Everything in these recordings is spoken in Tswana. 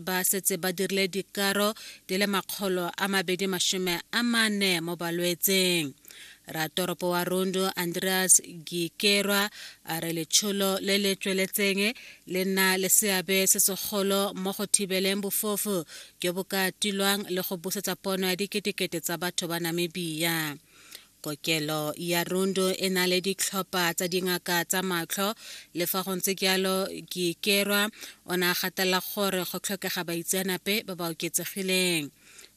ba setse ba dirile dikaro di le makgolo a mabedi masome a mane mo balwetseng ratoropo wa rondo andreas gikerwa a re letsholo le le tsweletseng le nna le seabe se segolo mo go thibeleng bofofu jo bo ka tilwang le go busetsa pono ya diketekete tsa batho ba namibia Kokelo ya Rundu e na le ditlhopha tsa dingaka tsa matlho le fa go ntse jalo Kiikerwa o ne a gatelela gore go tlhokega baitseanape ba ba oketsegileng.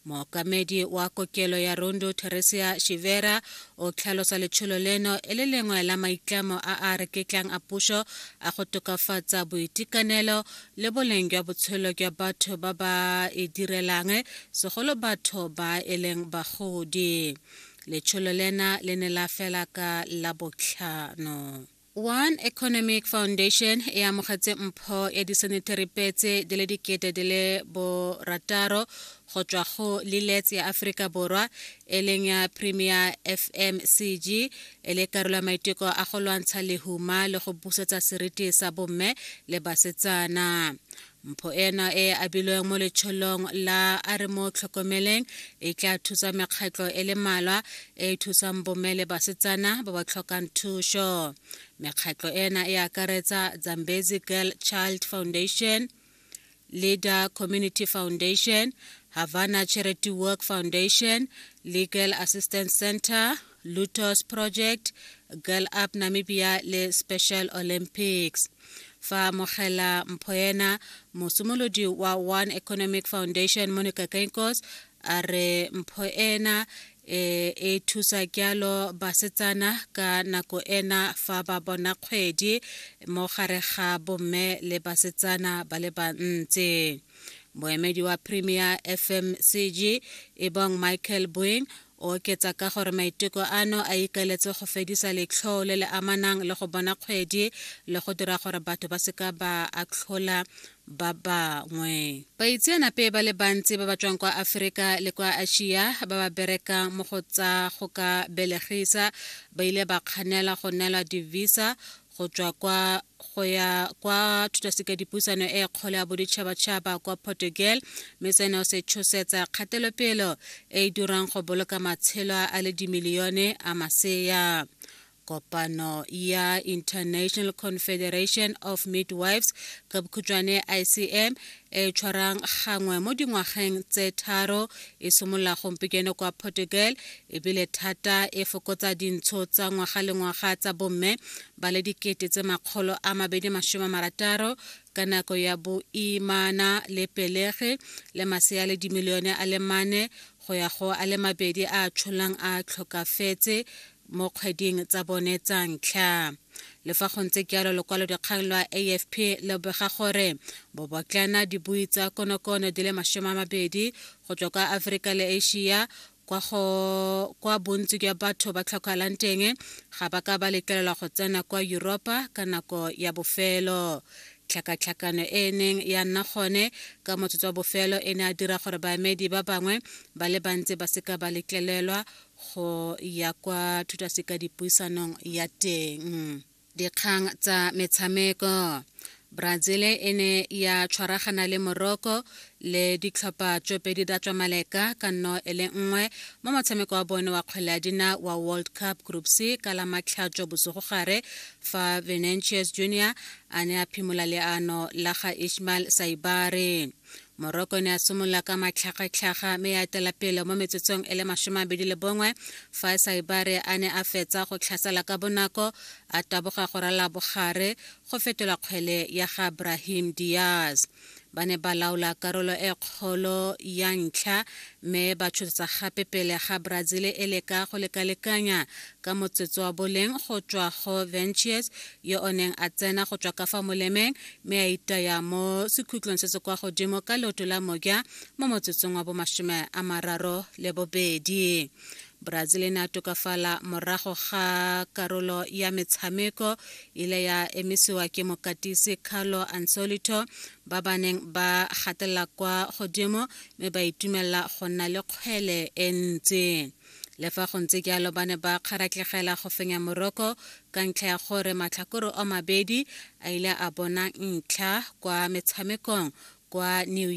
Mookamedi wa kokelo ya Rundu Theresia Shivera o tlhalosa letsholo leno e le lengwe la maitlamo a a reketlang a puso a go tokafatsa boitekanelo le boleng jwa botshelo jwa batho ba ba e direlang segolo batho ba e leng bagodi. Letsholo lena le ne la fela ka la botlhano. One Economic Foundation e amogetse mpho ya disenetary petse di le dikete di le borataro go tswa go Lilets ya Aforika Borwa e leng ya Premier FMCG e le karolo ya maiteko a go lwantsha lehuma le go busetsa seriti sa bomme le basetsana. Mpho eno e e abilweng mo letsholong la a re mo tlhokomeleng e tla thusa mekgatlho e le malwa e e thusang bomme le basetsana ba ba tlhokang thuso. Mekgatlho ena e akaretsa Zambezi Girl Child Foundation, Leader Community Foundation, Havana Charity Work Foundation, Legal Assistance Center, Lutos Project, Girl Up Namibia le Special Olympics. fa mogela mphoena mosimolodi wa one economic foundation monica kenkos a re mpho ena e e thusa kyalo basetsana ka nako ena fa ba bona kgwedi mo gare ga bomme le basetsana ba le bantsi moemedi wa premier fmcg ebong michael boeng O oketsa ka gore maiteko ano a ikaeletse go fedisa letlhoo le le amanang le go bona kgwedi le go dira gore batho ba seka ba atlhola ba bangwe. Baitseanape ba le bantsi ba ba tswang kwa Aferika le kwa Asia ba ba berekang mo go tsa go ka belegisa ba ile ba kganela go neelwa di-visa go tswa kwa go ya kwa thutasekadipuisano e kgolo ya boditšhabatšhaba kwa portugal mme seno se tshosetsa kgatelopelo e e dirang go boloka matshelo a le dimilione a masea kopano ya international confederation of midwives ka bokhutšwane icm e tshwarang gangwe mo dingwageng tse tharo e simolola gompieno kwa portugal ebile thata e fokotsa dintsho tsa ngwaga le ngwaga tsa bomme ba le dikete tse makgolo a mabedi masome marataro ka nako ya boimana le pelege le masea le dimilione a le mane go ya go a le mabedi a tsholang a tlhokafetse mo kgweding tsa bone tsa ntlha le fa go ntse jalo lokwalodikgang lwa afp le bega gore bobotlana dibui tsa konokono di le masome a mabedi go tswa kwa aforika le asia kwa go kwa bontsi jwa batho ba tlhokalang teng ga ba ka ba letlelelwa go tsena kwa Europa ka nako ya bofelo tlhakatlhakano e e neng ya nna gone ka motsotso wa bofelo e ne a dira gore baemedi ba bangwe ba le bantsi ba seka ba letlelelwa go ya kwa thutasekadipuisanong ya teng dikgang tsa metshameko brazil e ne ya tshwaragana le morocco le ditlhopha tsopedi da tswa maleka ka nno e le nngwe mo motshameko wa bone wa kgwele ya dina wa world cup group c ka la matlhatso bosigo gare fa venantius junior a ne a phimola leano la ga ishmael saibare moroko ne a simolola ka matlhagatlhaga mme ya etela pele mo metsotsong e le masome a bedi le bongwe fa e sa ibare a ne a fetsa go tlhasela ka bonako a taboga go rala bogare go fetola kgwele ya ga brahim diaz ba ne ba laola karolo e kgolo ya ntlha mme ba tshotsa gape pele ga brazil e leka go lekalekanya ka motsotso wa boleng go tswa go ventures yo o neng a tsena go tswa ka fa molemeng mme a itaya mo sekhutlong se se kwa godimo ka leoto la moja mo motsotsong wa bomasome a mararo le bobedi brazil e ne a tokafala morago ga karolo ya metshameko ile ya emisiwa ke mokatisi carlo ansolito ba ba neng ba gatelela kwa godimo mme ba itumelela go nna le kgwele e ntsi Le fa go ntse jalo ba ne ba kgaratlegela go fenya Morocco ka ntlha ya gore matlhakore o mabedi a ile a bona ntlha kwa metshamekong kwa New York.